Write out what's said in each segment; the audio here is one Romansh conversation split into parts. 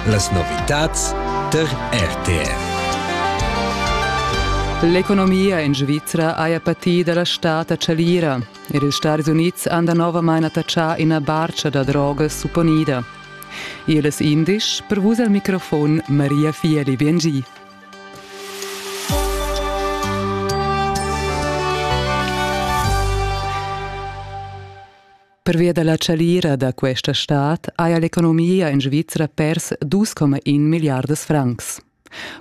Las novitads tar RTR. L'economia en Svizra haja patì da la stad a Chalira. Er ils Stadis Unids han danovamain attachà ina barcha da drogas supponida. Ils indisch, per vus al microfon Maria Fieli Biengi. Pervia da la chalira da questa stad haja l'economia en Svizra pers 2,1 milliardas francs.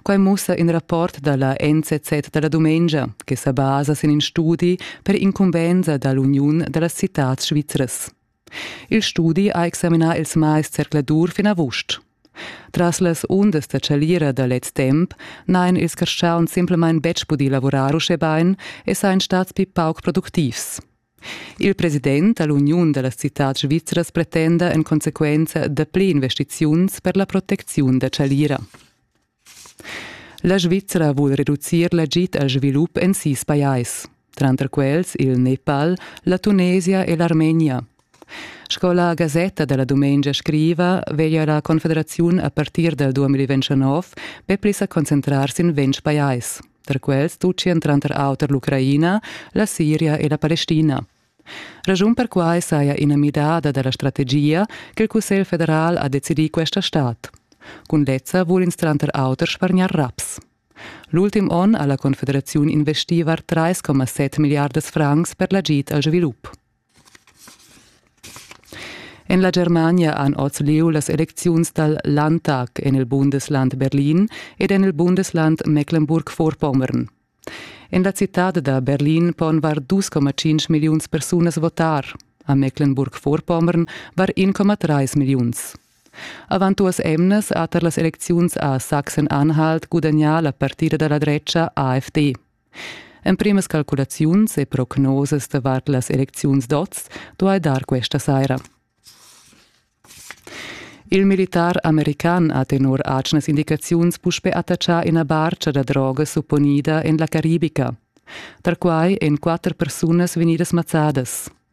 Quai mussa in rapport da la NZZ da la dumengia che sa basa sin in studi per incumbensa da l'Uniun da las citads svizras. Il studi ha examinà ils mais zercladur fin avust. Tras las undas da chalira da lez temp n'hain ils carstgauns simplamain betg pudì lavurar uschè bain e sain stats pli pauc productivs. Il president da l'uniun da las citads svizras pretenda en consequenza dapli investiziuns per la protecziun da chalira. La Svizra vul reducir l'agid al svilup en sis pajais, tranter quels il Nepal, la Tunesia e l'Armenia. Sco la Gazetta della Dumengia scriva, veglia la Confederaziun a partir dal 2029 be pli sa concentrar sin ventg pajais. Tar quels tutgian tranter auter l'Ucraina, la Siria e la Palestina. Raschun per quai saja ina midada da la strategia ch'il Cussegl federal ha decidì questa stad. Cun lezza vul ins tranter auter spargnar raps. L'ultim onn ha la Confederaziun investì var 3,7 milliardas francs per l'agid al svilup. En la Germania han oz lieu las elecziuns dal Landtag en il Bundesland Berlin ed en il Bundesland Mecklenburg-Vorpommern. En la citad da Berlin pon var 2,5 milliuns persunas votar. A Mecklenburg-Vorpommern var 1,3 milliuns. Avant duas emnas ha tar las elecziuns a Sachsen-Anhalt gudagnà la partida da la drecha AfD. Emprimas calculaziuns e prognosas davart las elecziuns d'oz duai dar questa saira. Il militar american ha tenor atgnas indicaziuns puspè attachà ina barcha da droga supponida en la Caribica. Tar quai èn quatter persunas vegnidas mazzadas.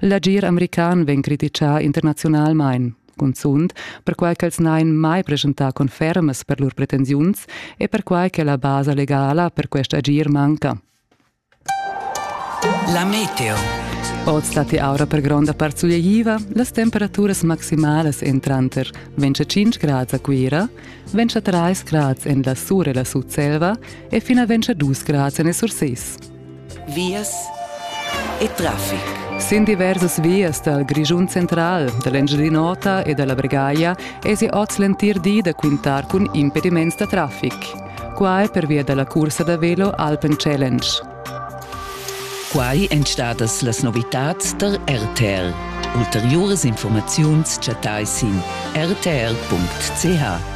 L'agir american vegn criticà internaziunalmain, cunzunt perquai ch'els n'hain mai preschentà confermas per lur pretensiuns e perquai che la basa legala per quest agir manca. La meteo. Oz datti aura per gronda part sulegliva, las temperaturas maximalas èn tranter 25 grads a Cuira, 23 grads en la Sur e la Sutselva e fina 22 grads en il Surses. vias e traffic. Sin diversas vias dal Grischun central, dall'Engiadin'Ota e dalla Bregaglia esi oz l'entir di da quintar cun impediments da traffic. Quai pervia dalla cursa da velo Alpen Challenge. Quai èn stadas las novitads tar RTL. Ulteriuras informaziuns chattai sin rtl.ch.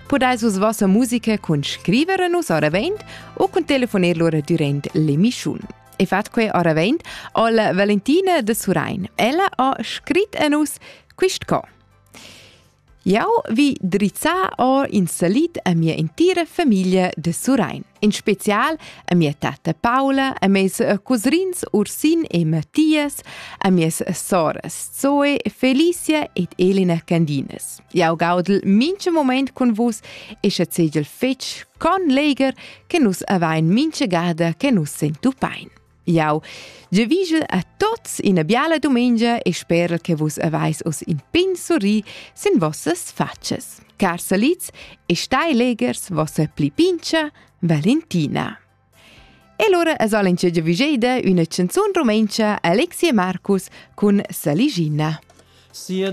Pudais vus vossa musica cun scriver a nus oravent u cun telefoner lura durant l'emischun. E fat quei oravent al Valentina de Surain. Ella ha scrit a nus quist co. Jau vi drizzar or in salit a mia entira famiglia de Surain, in special a mia tata Paula, a mes cousins Ursin e Mattias, a mies soras Zoe, Felicia ed Elena Candinas. Jau gaudel mincha moment cun vus e sche segel fetg con leger che nus avain mincha gada che nus sentupain. Jau gevigel a tots ina biala dumengia e sperel che vus avais oss in pin surri sin vossas facas. Car salids e stai legers vossa pli pincha Valentina. E allora es al in giavigeida üna canzun rumentscha Alexia Markus cun Saligina. Sia